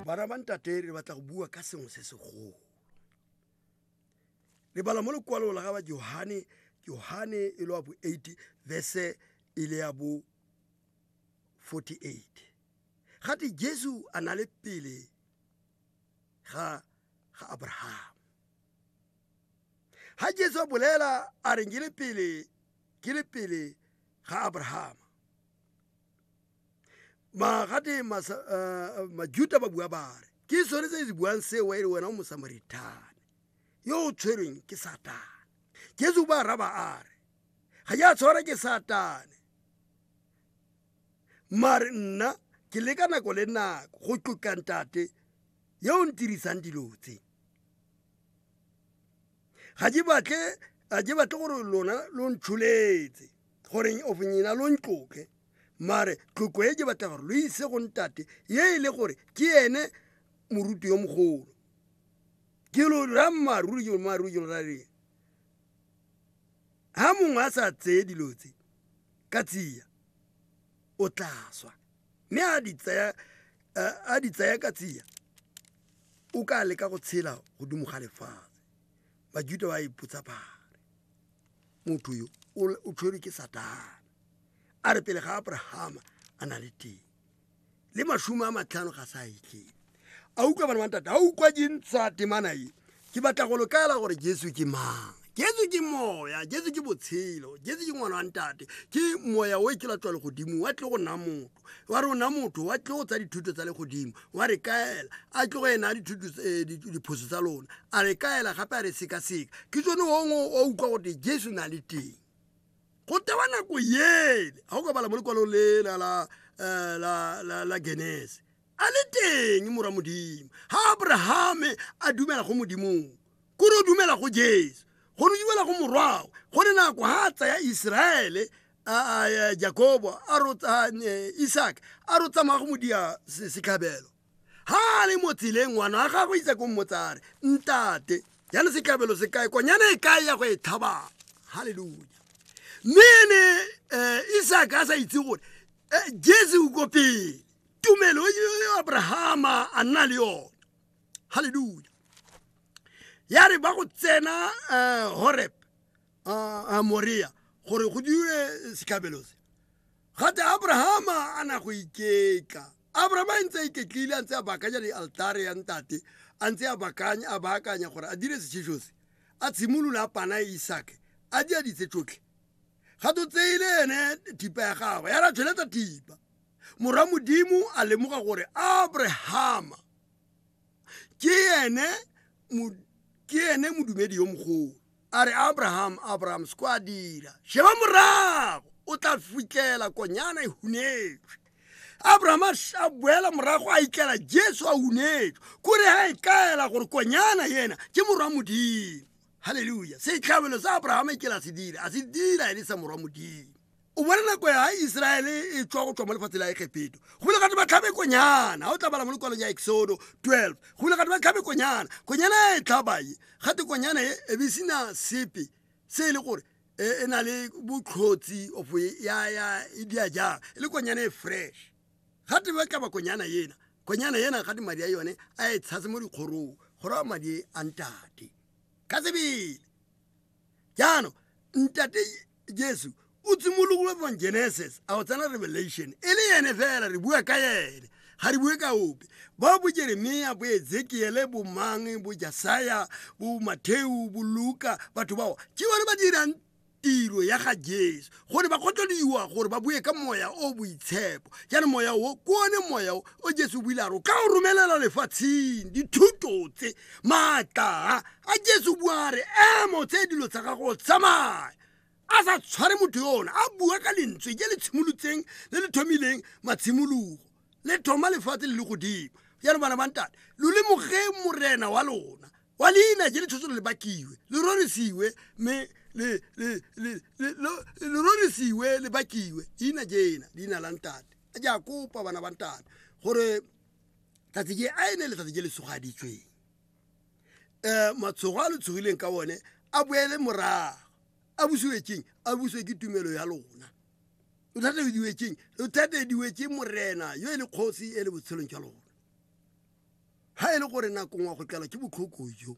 bana ba ntate re batla go bua ka sengwe se segolo lebala mo lekwalong la ga ba johane johane e le wa bo 8 verse e le ya bo 48 gate jesu a na le pele ga ga abraham ha jesu a bolela a reng ke le pele ke le pele ga abrahama magate majuta ba bua ba re ke sone tse di buang seo e le wena o mosamarithane yo o tshwerweng ke satane jesu ba raba a re ga ya tshwara ke satane mare nna ke le ka nako le nako go tlotla ntate yo o ntirisang dilo tse ga ke batle a ke batle gore lona lo ntsholetse goreng of nyena lo ntloke mare tloko e ke batla gore lo ise go ntate ye e le gore ke ene moruti yo mogolo ke lo ra mmaaruri ke mmaaruri ke ra reng ha mongwe a sa tseye dilo tse ka tsia o tla swa mme a di tsaya a di tsaya ka tsia o ka leka go tshela godimo ga lefatshe bajuta ba ipotsa bare motho yo o tshwerwe ke satana a re pele ga abrahama a na le teng le mashome a matlhano ga sa itlhele a utlwa bana bantate a utlwa dintsha temana e ke batla go lokaela gore jesu ke mang jesu ke moya jesu ke botshelo jesu ke ngwana wa ntate ke moya o e ke latswa legodimo wa tle go nna motho wa re o na motho wa tle go tsa dithuto tsa legodimo wa re kaela a tle go ena eh, diphoso tsa lona a re kaela gape a re sekaseka ke tsone ongwe wa utlwa gote jesu na le teng go tewa nako yele ga o ka bala mo lekwalong le la eh, genese a le teng mora modimo ga abrahame a dumela go modimong kore o dumela go jesu go ne dumela go morwago go ne nako ga a tsaya iseraele jakobo a rotsa e, isaka a ro tsamaya go modia setlhabelo ga a le mo tseleng ngwana wa gagwe isa ko mmotsare ntate jane setlhabelo se kae konyana e kae ya go e thabang halleluja mme ene um isaka a sa itse gore eh, jesu o ko pele tumelo e abrahama a nna le yone halleluja ya re ba go tsena eh, horeb eh, eh, morea gore go dire setlhabelo se gate abrahama a na go iketla abrahama a ntse a iketlile a ntse a bakanya di-altare ya ntate a ntse a baakanya gore a dire setšhiso se a tshimolola a pana isake a di a ditse tsotlhe ga to tseile ene thipa ya gagwe ya ra tshweletsa thipa morwa modimo a lemoga gore abrahama ke ene ke ene modumedi yo mogolo a re abraham abraham se ko a dira sheba morago o tla fitlhela konyana e hunetswe abraham a boela morago a itlela jesu a hunetswe kore ga e kaela gore konyana yena ke morwa modimo halleluja setlhabelo sa abrahama e kela se dira a se dira e le sa morwa modimo o bona nako ya iseraele e tswa go tswa mo lefatshe la egepeto go bile gate ba tlhabe konyana ga o tla bala mo lekwalong ya exodo 12 go bile gate ba tlhabe konyana konyana e tlhabae gate konyana e e be sena sepe se e le gore e, e na le botlhotsi of e, ya ya e dia jang e le konyana e fresh gate ba tlaba konyana ena konyana ena gate madi a yone a e tshase mo dikgorong gore a madi a ntate ka tsebele jaanong ntate jesu o tsimologile from genesis a o tsena revelation e le ene fela re bua ka ene ga re bue ka ope ba bo jeremia bo ezekiele bo mang bo jasaya bo matheu bo luka batho bao ke bone ba dirang tiro ya ga jesu go ne ba kgotleliwa gore ba bue ka moya o boitshepo jaanong moya o ke one moya o o jesu o builaro ka o romelela lefatsheng dithuto tse maatla a jesu bua re emo tse dilo tsa gago tsamaya a sa tshware motho yona a bua ka lentswe je le tshimolotseng le le thomileng matshimologo le thoma lefatshe le le godimo jalo bana bantate lo lemoge morena wa lona wa leina je le tshotse le bakiwe le rorisiwe mme le rorisiwe le bakiwe leina jena leina la ntate a ja kopa bana ba ntate gore tsatsi je a ene letsatsi je le sogaditsweng um matshogo a le tshogileng ka one a boele morago a busiwe keng a busiwe ke tumelo ya lona lo thatediwetseng lo thatediwetse morena yo e le kgosi e le botshelong jwa lona ga e le gore nakong wa go tlelwa ke botlhoko jo